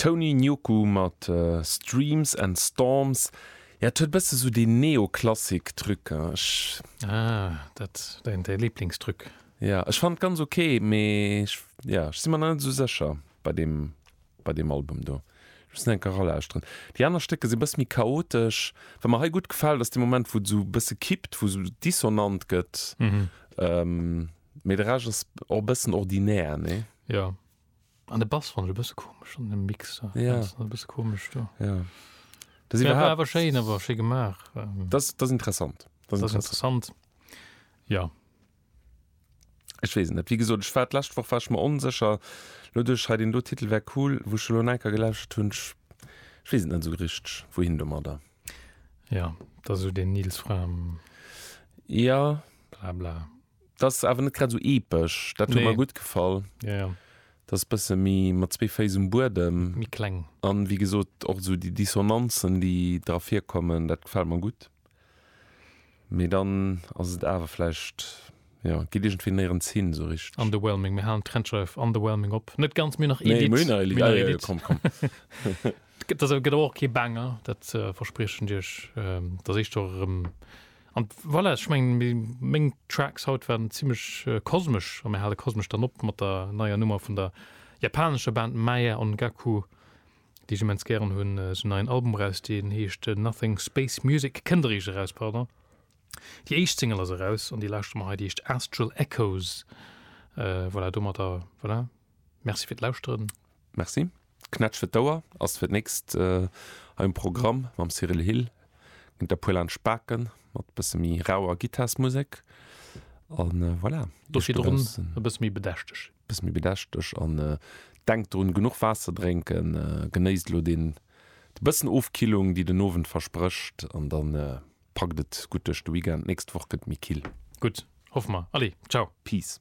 Tony Nyoku mat Streams and Storms, jo et huet bësse sou dee Neoklassik Truc, ech. Ah, dat däin däi Liblingstruc. Jo, ech fannen et ganz ok, mee ech, jo ech si mer nach net esou sécher bei deem bei deem Album do. Ech muss en enk eralauschteren. Déi aner Stécker si bësse méi chaotesch. Wat mer hei gutt gefält ass dee Moment wou et esou bësse kippt, wou esou dissonant gëtt. Mee de Rescht ass och e bëssen ordinär, nee? Ja. An de Bass fannen ech e bësse komesch an dem Mix. Ja. Dat ass e bësse komesch do. Ja. Dat ass iwwerhaapt. Awer schéin, awer schéi gemaach. Dat ass interessant. Dat ass interessant. Ja. Ech weess et net. Wéi gesot, ech war d'lescht Woch war ech mer onsécher. Lo duerch hei deen do Titel wär cool, wou ech elo en Enker gelauschtert hunn, ech weess et net esou richteg, wouhin domadder. Ja, dat ass esou deen Nils Frahm. Ja. Blabla. T'ass awer net grad esou epesch, dat huet mer gutt gefall. Jo, jo. T'ass e bësse méi mat zwee Féiss um Buedem. Méi kleng. A wéi gesot, och esou déi Dissonanzen, déi dra virkommen, dat gefält mer gutt. Mee dann ass et awer vläicht, jo, geet iergendwéi néierens hin esou richteg. Underwhelming, mir halen d'Trennschreif underwhelming op. Net ganz, mir hunn nach Edit. Nee, mir hunn nach Edit. Ah, jo, jo, komm, komm. Gëtt awer och kee Banger, dat verspriechen Iech. T'ass éischter erëm An voilà, ech mengen meng Tracks haut waren zimlech kosmesch, a mir hale kosmesch dann op mat der neier Nummer vun der japanescher Band Maya Ongaku, déi ech immens gären hunn. Si hunn en neien Album eraus, deen heescht Nothing Space Music, kënnt eréischt eraus, pardon. Déi éischt Single ass eraus an déi lauschtere mer hei, déi heescht Astral Echoes. Voilà, domadder voilà, Merci fir d'Lauschteren. Merci. D'Knätsch fir d'Ouer ass fir d'nächst hei um Programm. Mam Cyrille Hill ginn et e puer laansch Baken mat e bësse méi rauer Gittarsmusek. A voilà, do virdrun e bësse méi bedächteg. E bësse méi bedächteg. An denkt drun, genuch Waasser drénken. Genéisst elo dee bëssen Ofkillung, déi den Owend versprécht. An da packt et gutt duerch de Weekend. D'nächst Woch gëtt et méi kill. Gutt, hoffe mer. Allez, ciao. Peace.